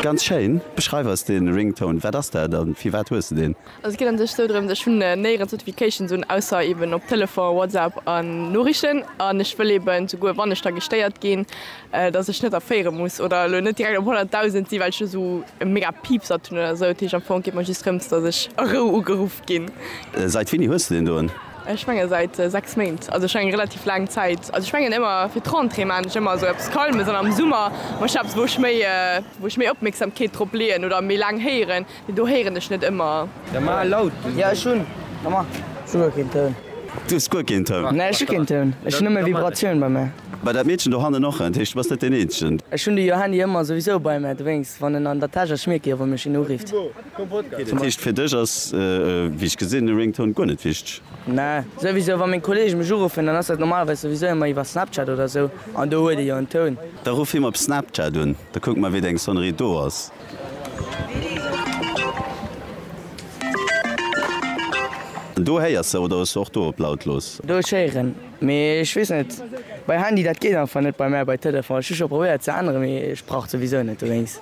Ganz schéin, beschreif eis den Ringtone, wat ass dat an firwat hues de den? Also et geet an sech sou drëms, ech hunn néierens Notifications un, ausser eben op Telefon, Whatsapp an Noriichten an ech wëll eben souguer wann ech da gestéiert ginn, dass ech net erféiere muss oder elo net direkt op 100.000 sinn, well ech elo sou e mega Piepsert hunn oder sou. Dat heescht am Fong geet mer just drëms, dass ech a Rou ugeruff ginn. Sait wéini hues de den doen? Ech menge säit 6 Méint, also schonn eng relativ laang Zäit. Also ech mengen ëmmer fir d'Rentrée maan ech ëmmer sou eppes Calmes an am Summer maan ech eppes wou ech méi wou ech méi Opmierksamkeet drop leeën oder méi laang héieren, mee do héieren ech net ëmmer. Jo ech hunn souguer keen Toun. Du hues guer keen Toun? Nee ech hu keen Toun, ech hunn nëmme Vibratioun bei mär. Bei dat Meedchen do hannen och, dat heescht du bass net deen eenzegen. Ech hunn de Johanni ëmmer souwisou bei mär, dowéinst wann en an der Täsch ass, ech mierke jo wann mech een urifft. Dat heescht fir dech ass, wéi ech gesinn, e Ringtone guer net wichteg? Mä souwisou, wa meng Kolleege mech uruffen, dann ass dat normalerweis souwisou ëmmer iwwer Snapchat oder sou, an do huet ee jo en Toun. Da ruff him op Snapchat un, da kucke mer wéi deng Sonnerie do ass. An do héiers se, oder hues se och do op lautlos? Do ech héieren, mee ech weess net, bei Handy dat geet einfach net bei mär, bei Telefon, ech hu scho probéiert ze änneren, mee et braucht souwisou net dowéinst.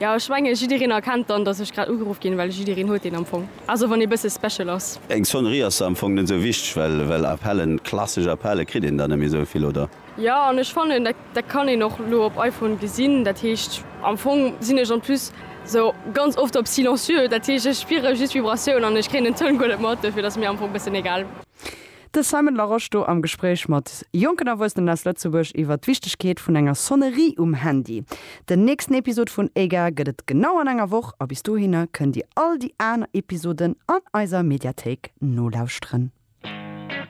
Jo ech menge jiddereen erkennt dann dass ech grad ugeruff ginn, well jiddereen huet een am Fong, also wann ee bësse special ass. Eng Sonnerie ass am Fong net esou wichteg, well well Appellen, klassesch Appelle kritt een der net méi esou vill, oder? Jo an ech fannen dat dat kann een och lo op iPhone gesinn, dat heescht am Fong sinn ech en plus esou ganz oft op silencieux, dat heescht ech spiere just Vibratioun an ech kréien den Toun guer net mat, dofir et ass mir am Fong bëssen egal. De Simon Larosche do am Gespréich mat jonken Erwuessenen aus Lëtzebuerg iwwer d'Wichtegkeet vun enger Sonnerie um Handy. Den nächsten Episod vun EGA gëtt et genau an enger Woch a bis dohinner kënnt Dir all déi aner Episoden an eiser Mediathéik nolauschteren.